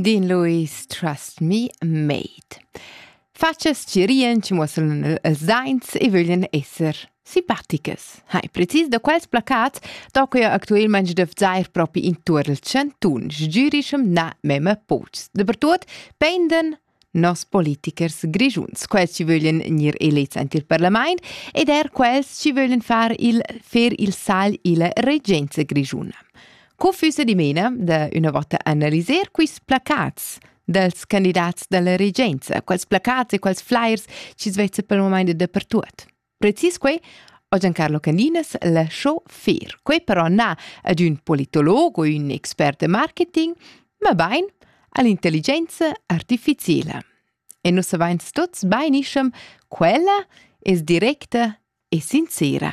Din Louis, Trust Me Made. Fatschas ci rien ci muosseln els zains e vöglien esser simpaticas. Hai precis da quels placat, da que actuelmente def zair propi in tur el chantun, sgürischem na meme pots. Dapertut, penden nos politichers grischuns, quels ci vöglien gnir elets aint il parlament ed er quels ci vöglien far il, fer il sal illa regenza grischuna. Co füsse dimena da üna vota analiser quist placats dels candidats dalla regenza, quels placats e quels flyers ci svezza per moment dappertuot? Precis quei ha Giancarlo Caninas lasciò fer. Quei però na ad un politolog o un expert de marketing, ma bain all'intelligenza artificiela. E nus avains tots bainiscem quella es directa e sincera.